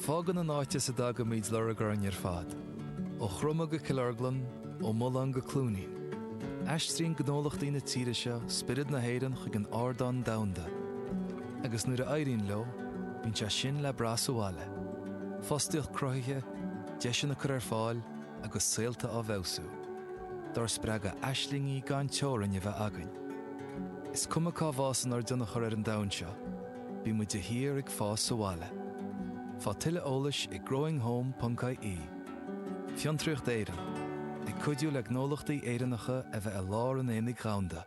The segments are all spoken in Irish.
Fágann an áit as a dtagaimid lorg orainn ar fad. Ó Chroma go Cill Orglan, ó Mhuileann go Cluainín. Aistríonn gnólachtaí na tíre seo spiorad na hÉireann chuig an ardán domhanda. Agus nuair a éiríonn leo, bíonn sé sin le brath sa bhaile. Fostaíocht cruthaithe, deiseanna á gcur ar fáil agus saolta á bhfeabhsú. Dár spreagadh aislingí gan teorainn a bheith againn. Is cuma cá bhfásann ár dtionchar ar an domhan seo. Bíonn muid de shíor ag fás sa bhaile. Faigh tuilleadh eolais ag growinghome.ie Fiontraíocht Éireann, ag cuidiú le gnólachtaí Éireannacha a bheith i lár an aonaigh dhomhanda.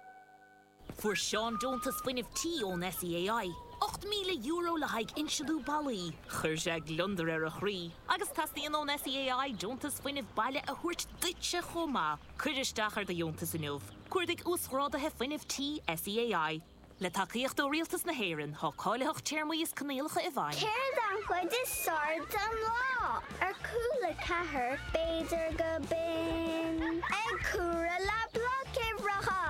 Fuair Seán deontas fuinnimh tí ón SEAI, €8,000 le haghaidh insealú ballaí. Chuir sé gliondar ar a chroí agus teastaíonn ón SEAI deontas fuinnimh baile a thabhairt duitse chomh maith. Cuir isteach ar do dheontas inniu, Cuardaigh Uasghrádaithe Fuinnimh Tí SEAI. Le tacaíocht ó Rialtas na hÉireann, tá cáilitheacht téarmaí is coinníollacha i bhfeidhm. Céard an chuid is fearr den lá? Ar Cúla4 b'fhéidir go binn. Ag comhaireamh le bloic uimhreacha,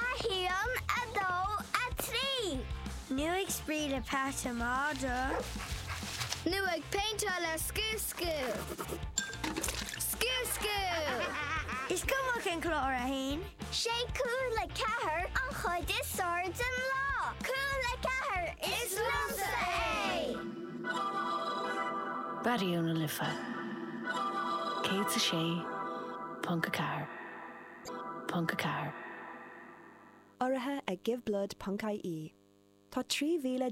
a haon, a dó, a trí. Nó ag spraoi le peata madra. Nó ag péinteáil ar scrios. School. School school! Is cuma cén clár é féin. 'Sé Cúla4 an chuid is fearr den lá. Cúla4, is liomsa é! Raidió na Life 106 ponc 4. Urraithe ag giveblood.ie Tá 3,000